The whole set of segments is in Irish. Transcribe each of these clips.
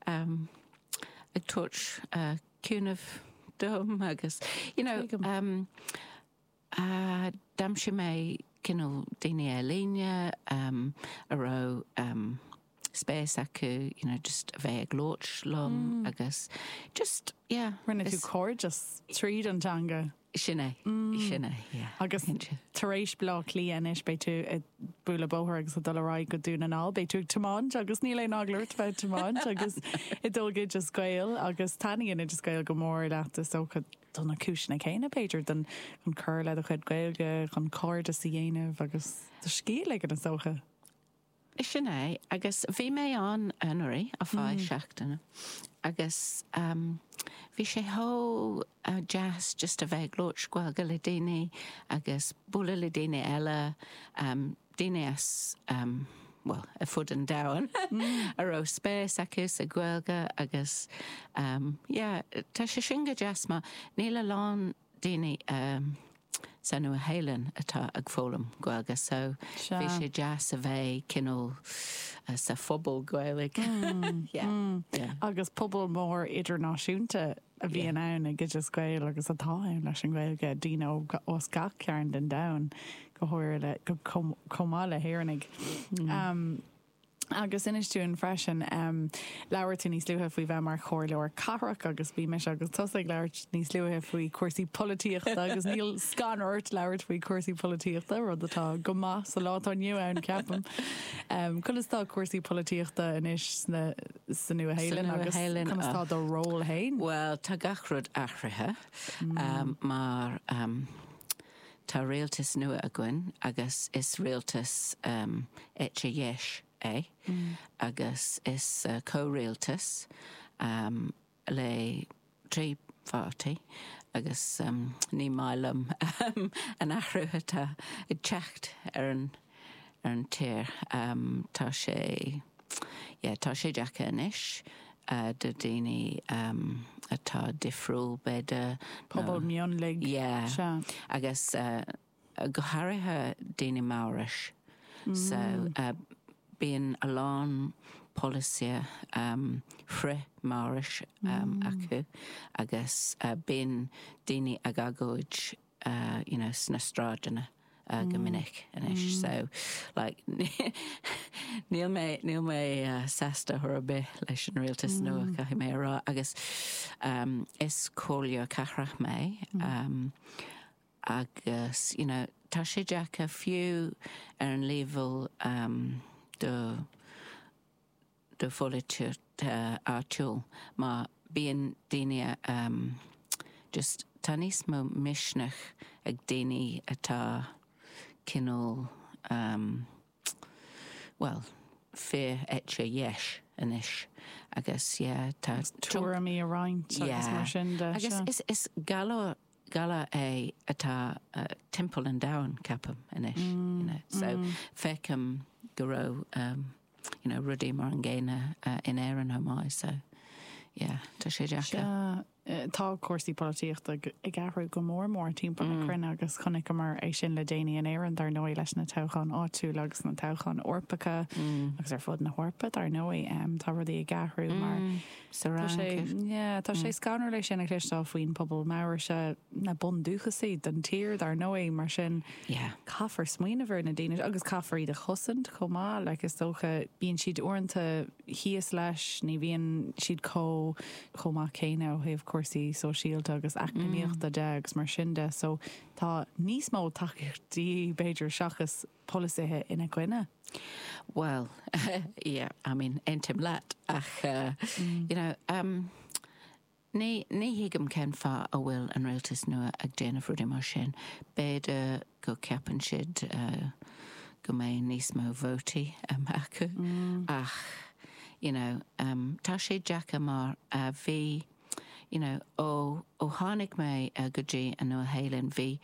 ag tabhairt cúnaimh dom agus you know d'aimsigh mé cineál daoine ar líne a raibh spéis acu you know just a bheith ag labhairt liom agus just yeah. Rinne tú cairdeas tríd an teanga? Sin é, sin é, yeah. Agus tar éis Bleá Cliath anois, beidh tú ag bualadh bóthair agus ag dul ar aghaidh go Dún na nGall, beidh tú ag tiomáint agus ní leadránach leat a bheith ag tiomáint agus ag dul go Oideas Gael agus taitníonn Oideas Gael go mór leat, is dócha, do na cúiseanna céanna b'fhéidir, don chun cur le do chuid Gaeilge, chun cairdeas a dhéanamh agus do scíth a ligean is dócha. Sin é agus bhí mé ann anuraidh ar feadh seachtaine agus bhí sé chomh deas just a bheith ag labhairt Gaeilge le daoine agus bualadh le daoine eile, daoine as, bhuel, ar fud an domhain a raibh spéis acu sa Ghaeilge agus yeah, tá sé sin go deas mar níl a lán daoine sa Nua Shéalainn atá ag foghlaim Gaeilge so bhí sé deas a bheith cineál sa phobal Gaeilge. Agus pobal mór idirnáisiúnta a bhíonn ann ag Oideas Gael agus atá ann leis an Ghaeilge, daoine as gach cearn den domhan go háirithe, chomh maith le hÉireannaigh. Agus inis dúinn freisin, em, labhair tú níos luaithe faoi bheith mar chomhairleoir cathrach agus bhí mise agus tusa ag labhairt níos luaithe faoi chúrsaí polaitíochta agus níl scanradh ort labhairt faoi chúrsaí polaitíochta, rud atá go maith sa lá atá inniu ann ceapaim. Em, conas tá cúrsaí polaitíochta anois sna, sa Nua-Shéalainn agus conas tá do ról fhéin? Bhuel, tá gach rud athraithe, em, mar, em, Tá rialtas nua againn agus is rialtas eite dheis é agus is comhrialtas le trí pháirtí agus ní maith liom an t-athrú atá ag teacht ar an ar an tír. Tá sé yeah tá sé deacair anois do daoine atá difriúil b'fhéidir nó pobal mionlaigh. Yeah. Sea. Agus go háirithe daoine Maorach. So bíonn a lán polasaithe frith-Mhaorach acu agus bíonn daoine ag agóid. you know, sna sráideanna go minic anois so like níl mé, níl mé sásta ar chor ar bith leis an rialtas nua, caithfidh mé a rá, agus is comhairleoir cathrach mé agus, you know, tá sé deacair fiú ar an leibhéal do de pholaitíocht áitiúil má bíonn daoine just tá níos mó misneach ag daoine atá cineál bhuel fíor eite dheis anois agus yeah tá tuairimí a roinnt agus mar sin de agus is is galar galar é atá timpeall an domhain ceapaim anois so feicim go raibh you know, rudaí mar an gcéanna in Éirinn chomh maith, so yeah, tá sé deacair. Sea, tá cúrsaí polaitíochta ag athrú go mór mór timpeall na cruinne agus chonaiceamar é sin le déanaí in Éirinn, dar ndóigh, leis na toghcháin áitiúla agus na toghcháin Eorpacha, agus ar fud na hEorpa, dar ndóigh, tá rudaí ag athrú mar Tá sé scanrúil é sin a chloisteáil faoin pobal Maoraise, na bundúchasaigh den tír dar ndóigh, mar sin caithfear smaoineamh ar na daoine seo agus caithfear iad a chosaint chomh maith. Like, is dócha, bíonn siad uaireanta thíos leis, ní bhíonn siad chomh maith céanna ó thaobh cúrsaí sóisialta agus eacnamaíochta de agus mar sin de so tá níos mó tacaíochtaí b'fhéidir seachas, polasaithe ina gcoinne? Bhuel, yeah, I mean, aontaím leat, ach you know, ní thuigim cén fáth a bhfuil an rialtas nua ag déanamh rudaí mar sin. B'fhéidir go gceapann siad go mbeidh níos mó vótaí acu, ach you know, tá sé deacair mar a bhí, you know, ó tháinig mé go dtí an Nua-Shéalainn, bhí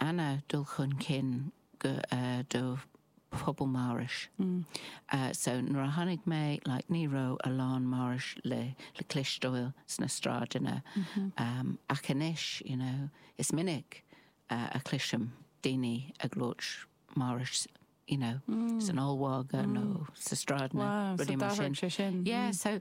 an-dul chun cinn do phobal Maorais. So nuair a tháinig mé, like, ní raibh a lán Maorais le cloisteáil sna sráideanna ach anois, you know, is minic a chloisim daoine ag labhairt Maorais, you know, san ollmhargadh nó sna sráideanna, rudaí mar sin. Wow, so d'athraigh sé sin. Yeah, so